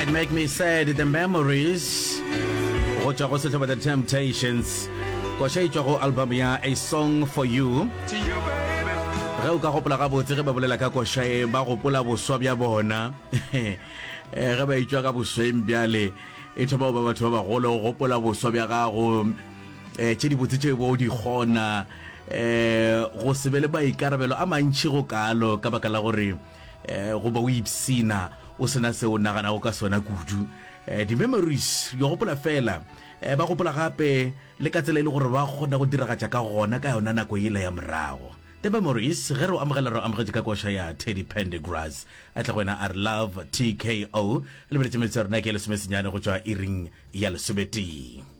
It make me sad the memories go tšwa go sehlobo the temptations koša e tšwa go album ya a song for you ge o ka gopola gabotse ge ba bolela ka koša e ba gopola boswa bja bona eh, ge ba itšwa ka bosweng bjale e thoma ba batho ba bagolo go gopola boswa bja gago um tše dibotse tšeo bo di kgona um go se be le maikarabelo a mantšhi go kalo ka baka la gore um goba o ipsena o sena se o naganago ka sona kudu um eh, di-memories yo gopola fela um ba gopola gape le ka tsela e le gore ba kgona go diragatša ka gona ka yona nako ele ya morago the memories ge re amogela re amogetse ka koša ya teddy pendegrass a tle go wena a re love tko lebeletse metsi ya rona ke lesomesenyane go tšwa iring ya lesometee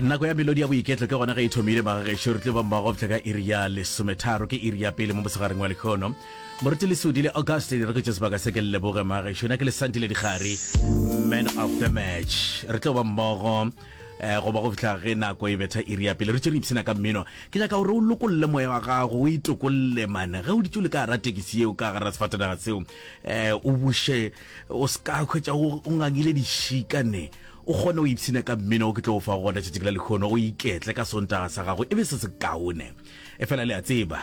nako ya melodi ya boiketlo ke gona ge e thomile bagagešo re tlo ba mmagopša ka iri ya lesometharo ke iri ya pele mo mosegareng wa lekgono moruti lesodi le augustin re kwetše sebaka se ke le leboge magešo na ke le santile dikgare man of the match re tlo ba mmogo Eh, go ba go fihla ge nako e betha iri ya pele re tšere ipsena ka mmino ke nyaka gore o lokolle moya wa gago o itokolle mane ge o ditse o le ka gara tekisi yeo ka gara sefatanaga seo um o buše o se ka kgwetsa o ngangile dišika ne o kgone o ipsene ka mmino o ke tlo o fa gona tšatši la lekgono o iketle ka sontaga sa gago e be se se kaone e fela le a tseba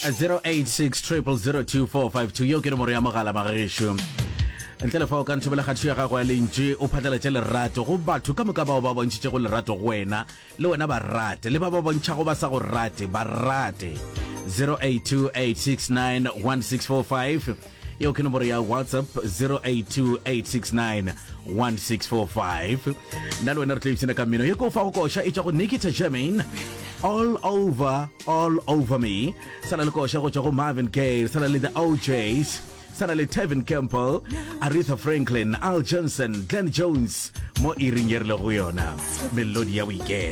0860002452 yo ke nomoro ya mogala magešo ntle le fa o ka ntshobela kgatho ya gago ya lentši o phatlalatše lerato go batho ka moka bao ba bontšhitše go lerato go wena le wena ba rate le ba ba bontšhago ba sa go rate ba rate 0828691645 yeo ke nomoro ya whatsapp 0828691645 nna le wena re tlo ipshina ka mmino ye ko fa go koša e tša go nikita germain all over All Over Me, sa na le koša go tšwa go Marvin Gaye, sa na le The O'Jays, sa na le Tevin Campbell, Aretha Franklin, Al Johnson, Glenn Jones mo iring ye re lego go yona, melodi ya boiketlo.